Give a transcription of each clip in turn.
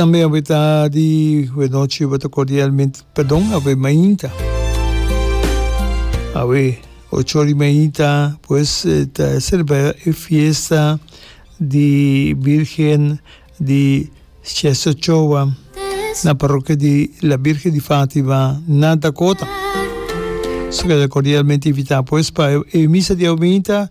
Tambe awe ta di wenochi bo ta cordialmente perdon awe mainta awe ocho ori mainta pues ta celebra e fiesta di virgen di Chester Ochoa na parrokia di la virgen di Fatima na Dakota so keda cordialmente invita pues pa e misa di awe mainta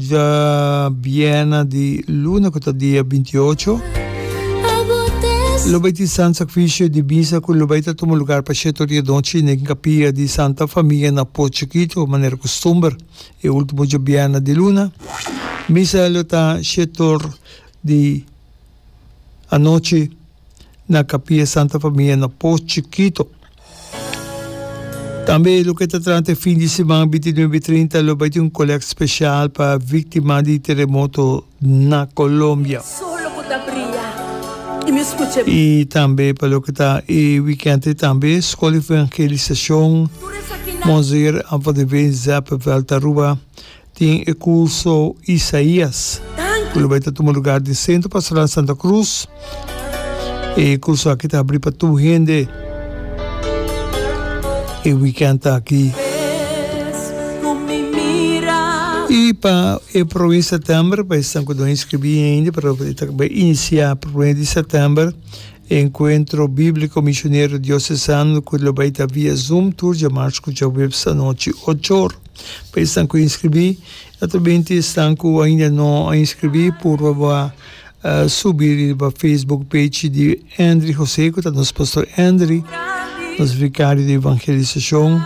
Dja biena di luna ku ta dia binti i ocho lo bai tin sant sakrifisio di misa ku lo bai ta tuma lugar pa Sheto Riedochi na e kapia di Santa Famia na Po Chikitu manera kustumber e ultimo dja biena di luna. Misa lo ta Shetor di anochi. na Capilla Santa Familia na Post Chikito. Tambe loke ta trata e fin di siman bintinuebe i trinta lo bai tin un kolèkt spesial pa víktima di teremoto na Colombia. I tambe pa loke ta e wikènt ei tambe Skol di Evangelisashon Monseer Anton de Veen Zeppenveld Aruba Tin e curso Isaías cu lo bay ta tuma lugar den Centro Pastoral Santa Cruz. E curso aki ta habri pa tur hende e weekend aki. Y pa e prome di September pa esnan cu no a inscribi ain, pero e ta bay inicia prome di September. Encuentro Bíblico Misionero Diocesano cu lo bay ta via Zoom tur dje march cu dje webs anochi ocho or. Pa esnan cu inscribí, naturalmente esnan cu ainda no a inscribí purba bo a subi riba Facebook page di Endry José cu ta nos Pastor Endry, nos Vicario di Evangelisacion,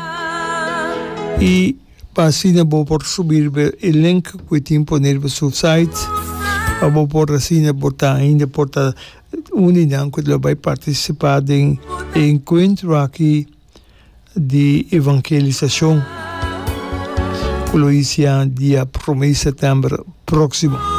y pa asina bo por subi riba e link cu e tin pone riba su site pa bo por asina bo ta ainda por ta Uninan cu ta lo bay participa den e encuentro aki di evangelisacion cu lo ycia dia prome di september proximo.